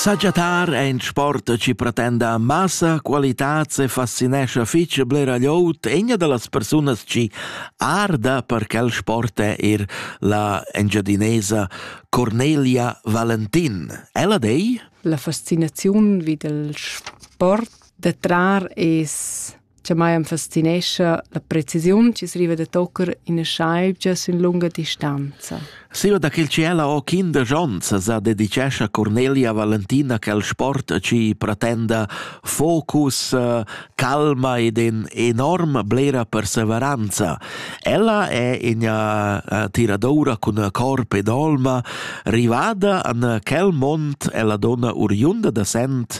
Saggiatar è in sport che pretenda massa qualitats e fascinescha fitg blera glieud egna da las persunas che arda per quel sport è er la engiadinesa Cornelia Valentin. Ella dei? La fascinaziun vid il sport da trar es che mai am fascinescha la precisiun chi riva da tocker ina schaibgia sün lunga distanza. Siva da quel ciela o kinder Jons sa dedicescha Cornelia Valentina quel sport ci pretenda focus, eh, calma ed in enorm blera perseveranza. Ella è in eh, tiradoura cun corp ed olma rivada an quel mont e la donna uriunda da sent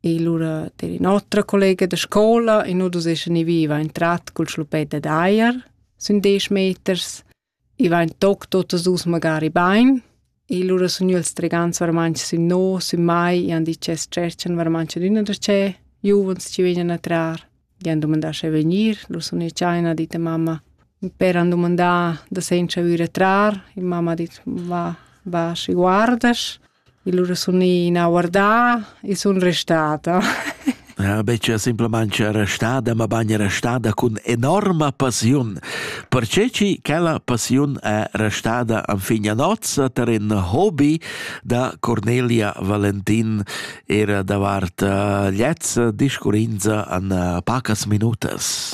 E lura der in otra collega da scola e nu dus eschan i viva in trat cul schlupet dad eier sün desch meters. I va in toc totas dus magari bain. E lura sun io els tregants varmanch sün no, sün mai, e han dit che stretchan varmanch ad üna da ce, giuvens ci vegnan a trar. Gli han domandà se venir, lo sun io cha ha dit a mamma. Per han domandà da senza vir a trar, e mamma ha dit va, va, si guardas. Il ura sun ina guardà, i sun restada. Ja, betga simplamain che restada, ma bagn restada cun enorma passiun. Perche chi quella passiun è restada anfigna nozza tar in hobby da Cornelia Valentin era davart uh, liezza discurrinza an uh, pacas minutas.